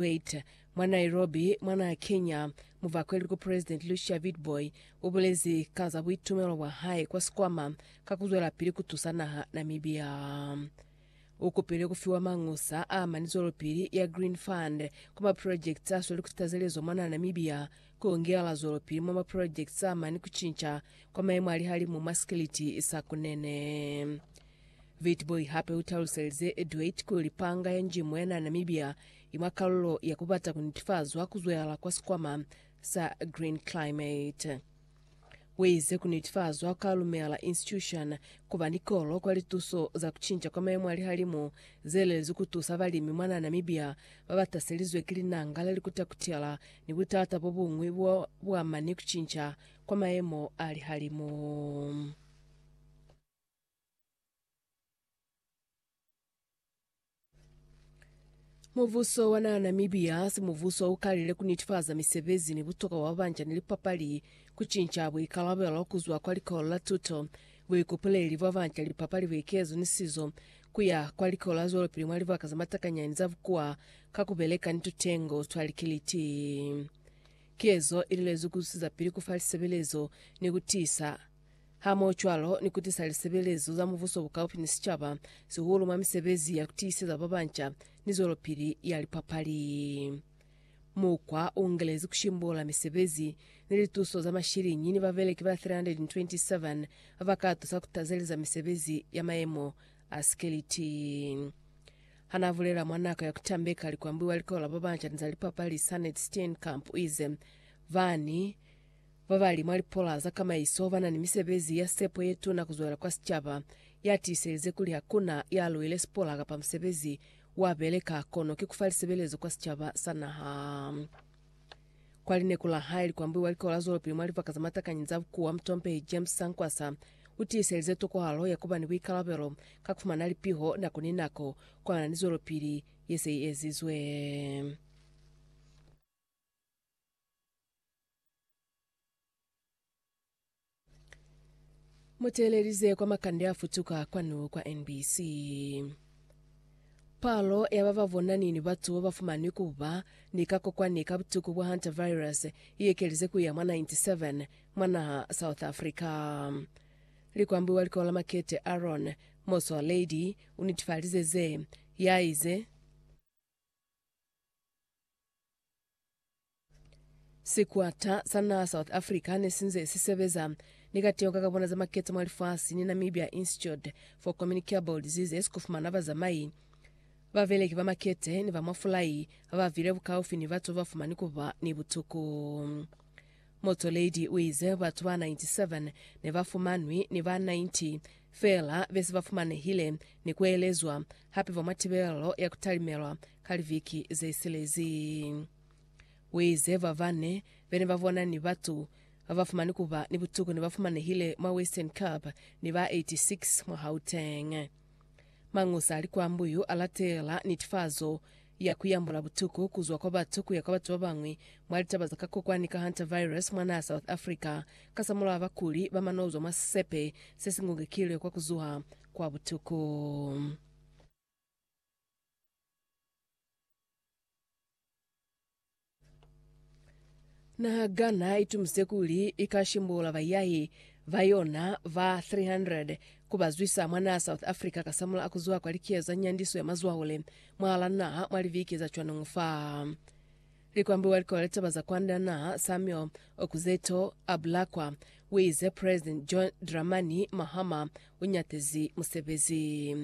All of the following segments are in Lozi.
Wait, mwa Nairobi, mwa naa ya Kenya, muvakweli ku President Lucia Witbooi ubulezi ka za buitumelo bwa hae kwa sikwama ka kuzwelapili kutusa naha Namibia. Ukupile kufiwa mangusa a mani zwelopili ya Green Fund kwa ma projects asweli kusitazelezo mwa naa Namibia, ku ngeela zwelopili mwa ma projects a mani kucinca kwa maemo a lihalimu mwa sikiliti sa Kunene. Witbooi hape utaluselize Edwait kuli panga ya njimu ya na Namibia i mwa kalulo ya kubata kunetifazwa kuzwehala kwa sikwama sa Green Climate. Uize kunetifazwa kwa Lumela Institution kuba ni kolo kwa lituso za kucinca kwa mayemo a lihalimu zelelezwi kutusa balimi mwa na Namibia babataselizwe ki linanga la likuta-kutela ni butata bobuñwi bo buama ni kucinca kwa mayemo a lihalimu. Mubuso wa naa Namibia hasi mubuso wa ukalile ku nitifaza misebezi ni butokwa bwa banja ni lipapali, ku cinca buikalabelo ku zwa kwa likolo la tuto, buikupuleli bwa banja ni lipapali, buikezo ni sizo, ku ya kwa likolo la zwelopili mwa libaka za matakanyani za bukuwa ka ku beleka ni tutengo twa likiliti. Ki ezo i lilezwi ku zusizapili ku fa lisebelezo ni ku tiisa hamohocwalo ni kutisa lisebelezo za mubuso bukaufi ni sicaba, sihulu mwa misebezi ya kutiiseza babanca ni zwelopili ya lipapali. Mukwa uungelezi kushimbula misebezi ni lituso za mashiliñi ni babeleki ba 327 babakatusa kutazeleza misebezi ya mayemo a sikeliti. Hanaabulela mwa nako ya kutambeka likwambuiwa likola babanca ni za lipapali Sanet Steenkamp uize, Bani Babali mwa lipola za kamaiso ba na ni misebezi ya sepo ye tuna ku zwela kwa sicaba. Ya tiiselize kuli ha ku na ya luile sipola kapa musebezi wa beleka, kono ki ku fa lisebelezo kwa sicaba sa naha. Kwa lineku la hae, likwambuhi wa likolo la zwelopili mwa libaka za matakanyi za bukuwa, mutompehi James Sankwasa, u tiiselize tokohalo ya ku ba ni buikalabelo ka ku fumana lipiho nako ni nako kona ni zwelopili ye se i ezizwe. Muteelelize kwa makande afutuka kwanu kwa NBC. Palo ya ba ba bonani ni batu ba ba fumanwi ku ba ni kakokwani ka butuku bwa hantavirus i ekelize ku ya mwa 97 mwa naha South Africa. Likwambi wa likolo la Makete Aaron Motsoaledi u nitifalize ze, yaize, Sikwata sa naha South Africa ne si nze si sebeza ni kateho ka kabona za maketa mwa lifasi ni Namibia Institute for Communicable Diseases ku fumana bazamai, babeleki ba makete ni ba mwa fulai ba ba vile bukaufi ni batu ba ba fumani ku ba ni butuku. Motsoaledi u ize batu ba 97 ne ba fumanwi ni ba 90 feela be se ba fumanehile ni ku elezwa hape ba mwa tibelo ya ku talimelwa ka liviki zesilezi. Uize babane bene babona ni batu babafumani kuba ni butuku nebafumanehile mwa Western Cape ni ba 86 mwa Gauteng. Mañosa ali kwa Mbuyu alatela nitifazo ya kuyambula butuku kuzwa kwa batu kuya kwa batu babañwi mwa litaba za kakokwani ka hantavirus mwa naha South Africa kasamulaho bakuli bamanozwa mwa sisepe sesingungekilwe kwa kuzuha kwa butuku. Nahagana itumise kuli ika shimbula bayahi ba yona ba 300 ku ba zwisa mwa naha South Africa kasamula a ku zuha kwa likiyo za nyandiso ya mazwahule mwahala naha mwa liviki za cwaneñu fa likwambi wa likolo la litaba za kwanda naha Samuel Okudzeto a bulakwa. U ize President John Dramani Mahama u nyatezi musebezi.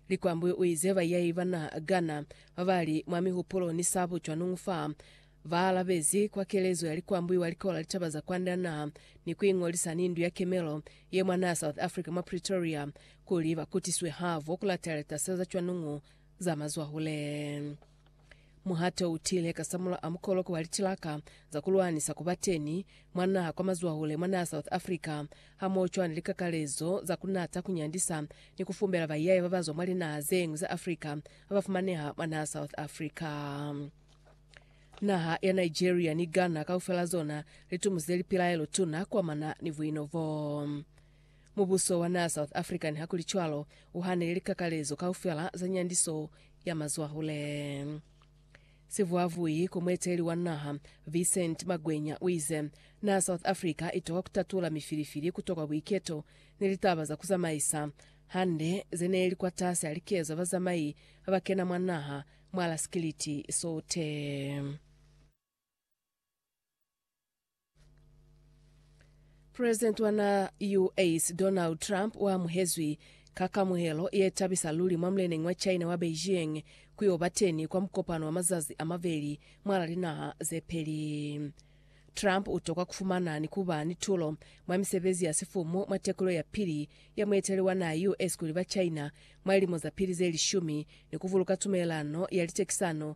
Likwambi uize baiyai bana Ghana babali mwa mihupulo ni sabu cwanuñu fa ba alabezi kwa kelezo ya likwambi wa likola litaba za kwande ya naha ni kuingolisa ni Ndu ya Kemelo ye mwa naha ya South Africa mwa Pretoria kuli bakutiswe havo kulateleta seza cwanuñu za mazwahule. Muhato u tile kasamula a mukoloko wa litilaka za ku lwanisa ku ba teni mwa naha kwa mazwahule mwa naha South Africa, hamoocwana ni likakalezo za ku nata, ku nyandisa, ni ku fumbela baiyaya ba ba zwa mwa linaha ze ñwi za Africa ba ba fumaneha mwa naha South Africa. Naha ya Nigeria ni Ghana kaufela zona li tumuze lipilaelo tuna ku amana ni buino bo. Mubuso wa naa South Africa nihakulicwalo u hanile likakalezo kaufela za nyandiso ya mazwahule. Sivuavui ku mueteleli wa naha, Vincent Magwenya uize, Naa South Africa itoka kutatula mifilifili kutokwa buiketo ni litaba za kuzamaisa hande zeneeli kwatasi alikezo ya bazamai babakena mwa naha mwala sikiliti sote. President wa na US Donald Trump wa amuhezwi ka kamuhelo ye tabisa luli mwa muleneñi wa China wa Beijing ku yo ba teni kwa mukopano wa mazazi a mabeli mwala linaha ze peli. Trump u tokwa ku fumana ni ku ba ni tulo mwa misebezi ya sifumu mwa tekulo ya pili ya mueteleli wa naha US kuli ba China mwa lilimo za pili ze lishumi ni ku buluka tumelelano ya litekisano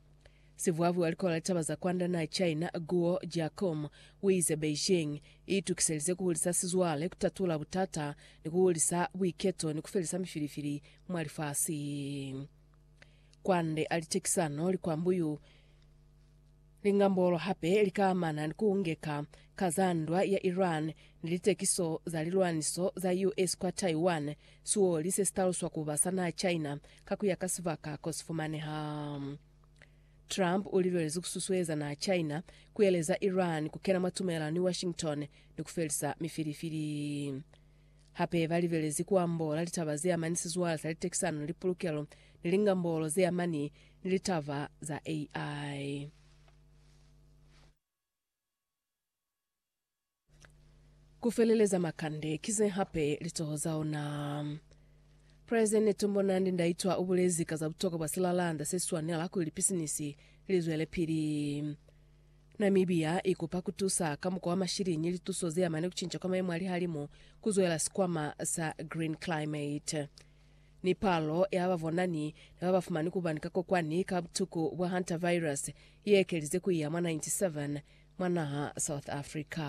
Sivuavuha likola litaba za kwanda naa China Guo Jiakong uize Beijing iitukiselize kuhulisa sizwale, kutatula butata, ni kuhulisa buiketo ni kufelisa mifilifili mwa lifasi. Kwande ali cekisano likwambu yu lingambolo hape likaamana ni kuungeka ka za ndwa ya Iran ni litekiso za lilwaniso za US kwa Taiwan, sioli sesitaluswa kuba sa naa China Ka ku ya ka sibaka ko si fumaneha, Trump u lilwelezi ku susueza n'a China ku yeleza Iran ku kena mwa tumelano ni Washington ni ku felisa mifilifili. Hape ba lilwelezi ku ambola litaba ze amani sizwale sa litekisano ni lipulukelo ni lingambolo ze amani ni litaba za AI. Ku feleleza makande, ki ze hape litoho za ona. President Netumbo Nandi Ndaitwah ubulezi ka za butokwa bwa silalanda se swanela kuli lipisinisi li zwelepili. Namibia ikupa kutusa ka mukwa wa mashilinyi lituso zeamane kucinca kwa mayemo a lihalimu kuzwela sikwama sa Green Climate. Ni palo ya bavonani ni babafumani kubani ka kokwani ka butuku bwa Hantavirus iekelize kuiya mwa 97 mwa naha South Africa.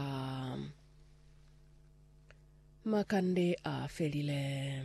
Makande a felile.